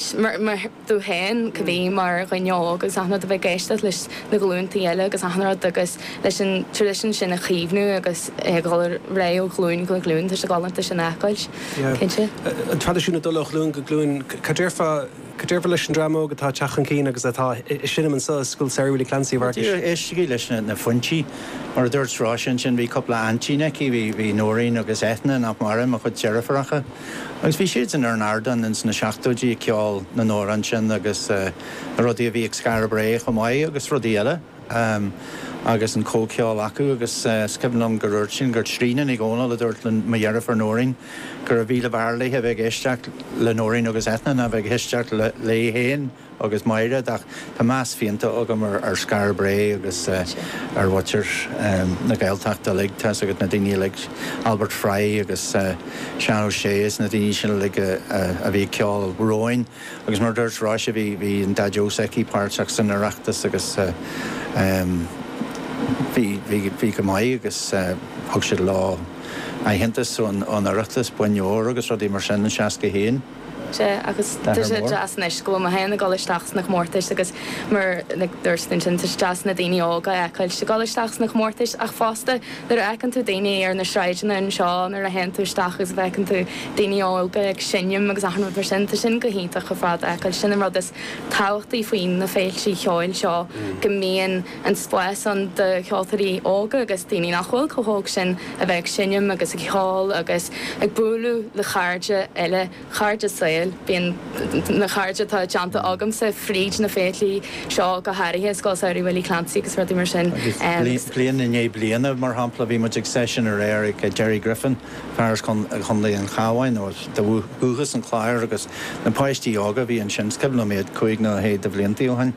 Ar ndóigh cad é mar dhuine óg agus achan rud a bheith ag éisteacht leis na glúntaí eile agus achan rud agus leis an tradition sin a chaomhnú agus é ag dul ar aghaidh ó ghlúin go glúin, tá sé galánta sin a fheiceáilt, cinnte. An tradition ag dul ó ghlúin go glúin, cad déarfá, cad déarfá leis an dream óg atá ag teacht chun cinn agus atá ag seinm anso ag Scoil Samhraidh Willie Clancy a Fhearghais? Díreach, éistigí leis na foinsí. Mar a dúirt Róis ansin, bhí cúpla aintín aici, bhí Nóirín agus Eithne, nach maireann, mo chuid deirfiúracha. Agus bhí siadsan ar an ardán ins na seachtóidí ag ceol na n-amhrán sin agus na rudaí a bhí ag Skara Brae chomh maith agus rudaí eile agus an comhcheol acu agus 's cuimhin liom gur úirt sí gur Tríona Ní Dhomhnaill a dúirt le mo dheirfiúr Nóirín gurbh mhíle bhfearr léithe a bheith ag éisteacht le Nóirín agus Eithne ná a bheith ag éisteacht léi féin. agus Maighread, ach tá meas fianta agam ar Skara Brae agus ar mhuintir na Gaeltachta uilig. Tá's agat na daoine uilig, Albert Fry agus Seán Ó Sé is na daoine sin uilig a bhí ag ceol romhainn agus mar a dúirt Róis bhí an Daideo s'aici páirteach san Oireachtas agus bhí go maith agus thug siad leo aitheantas ón Oireachtas, boinn óir agus rudaí mar sin i seasca haon. sé agus tá sé deas anois go bhfuil mé féin ag dul isteach sna comórtais agus mar a dúirt tú ansin tá sé deas na daoine óga a fheiceáilt ag dul isteach sna comórtais ach fosta nuair a fheiceann tú daoine ar na sráideanna anseo nuair a théann tú isteach agus a bhfeiceann tú daoine óga ag seinm agus achan rud mar sin tá sin go hiontach ar fad a fheiceáilt sin an rud is tábhachtaí faoi na féiltí ceoil seo go mbíonn an spás ann do cheoltóirí óga agus daoine nach bhfuil chomh hóg sin a bheith ag seinm agus ag ceol agus ag bualadh le cairde eile, cairde saoil. Bhuel na cairde atá déanta agamsa fríd na féiltí seo go háirithe, Scoil Samhraidh Willie Clancy agus rudaí mar sin. Agus bliain i ndiaidh bliana, mar shampla, bhí muid ag seisiún aréir ag Jerry Griffin, fear as Contae an Chabháin, nó de dhúchas as an Chlár agus na páistí óga a bhí ansin, is cuimhin liom iad cúig nó sé de bhliantaí ó shin.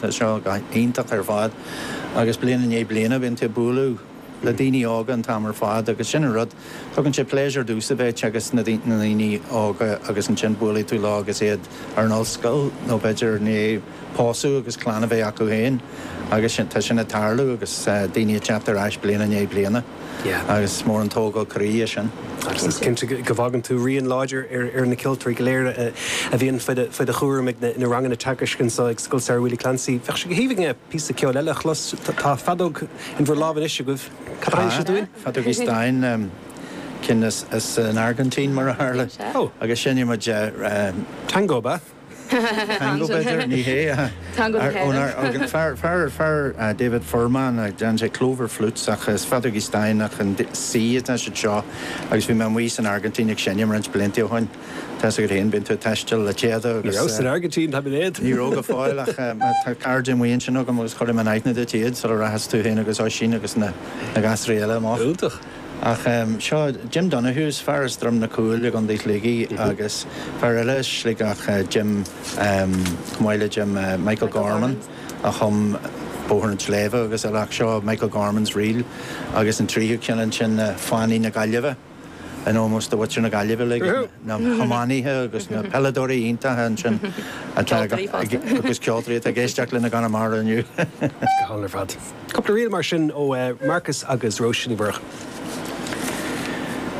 Tá seo go h-iontach ar fad agus bliain i ndiaidh bliana bíonn tú ag bualadh le daoine óga an t-am ar fad agus sin an rud, tugann sé pléisiúr domhsa a bheith teagasc na ndaoine óga agus ansin buailfidh tú leo agus iad ar an ollscoil nó b'fhéidir i ndiaidh pósadh agus clann a bheith acu féin agus sin, tá sin ag tarlú agus daoine ag teacht ar ais bliain i ndiaidh bliana. agus is mór an tógáil croí é sin. Agus is cinnte go bhfágann tú rian láidir ar na ceoltóirí go léir a bhíonn faoi do chúram ag na ranganna teagaisc anseo ag Scoil Samhraidh Willie Clancy. Bheadh sé go haoibhinn againn píosa ceoil eile a chlos. Tá feadóg in bhur lámh anois agaibh. Cad tá sibh chun? Tá, feadóg Easterndine, déanta san Airgintín mar a tharla, agus seinnfidh muid. Tango, ab ea? Teangaidh b'fhéidir? Ní hé. Teangaidh na hÉireann. Fear, fear, fear David Forman a dhein sé clover flutes ach is feadógaí stáin i C nó D atá siad seo agus bhí mé amuigh san Airgintín ag seinm roinnt blianta ó shoin. Tá's agat féin, bíonn tú ag taisteal le Téada agus. Ní rabhas san Airgintín, tá mé léad. Ní raibh go fóill ach tá cairde amuigh ansin agam agus chuirfidh mé in aithne duit iad sula rachas tú féin agus Oisín agus na gasúir eile amach. Iontach. Ach seo Jim Donohue's, fear as Droim na Cúile i gCondae Shligigh agus fear eile as Sligeach Jim, chomh maith le Jim, Michael Gorman a chum Bóthar an tSléibhe agus eile ach seo Michael Gorman's Reel agus an tríthú ceann ansin Fánaí na Gaillimhe in ómós do mhuintir na Gaillimhe le na hiománaithe agus na peileadóirí iontacha ansin atá agus ceoltóirí atá ag éisteacht linn i gConamara inniu. Go hálainn ar fad. Cúpla ríl mar sin ó Marcus agus Róis Ní Mhurchú.